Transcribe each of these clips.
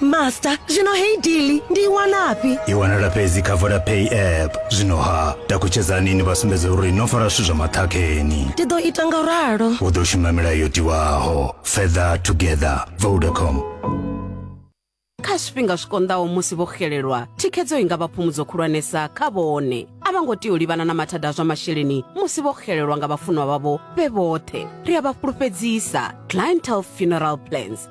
master zwino heyi dili ndi i wanafhi i wanala fhedzi kha vodapay app zwino ha takutshedzani ni vha sumbedze uri no fara zwithu zwa maṱhakheni ndi ḓo ita nga ralo u ḓo shuma milayo yo tiwaho feather together vodacom kha zwifhinga zwi konḓaho musi vho xelelwa thikhedzo i nga vha phumudzo khulwanesa kha vhone a vha ngo tea u livhana na mathada a zwa masheleni musi vho xelelwa nga vhafunwa vhavho vhe vhoṱhe ri a vha fhulufhedzisa clientele funeral plans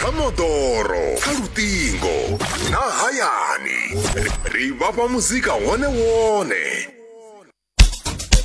kha moḓoro kha luṱingo na hayani ri vhafha muzika wone wone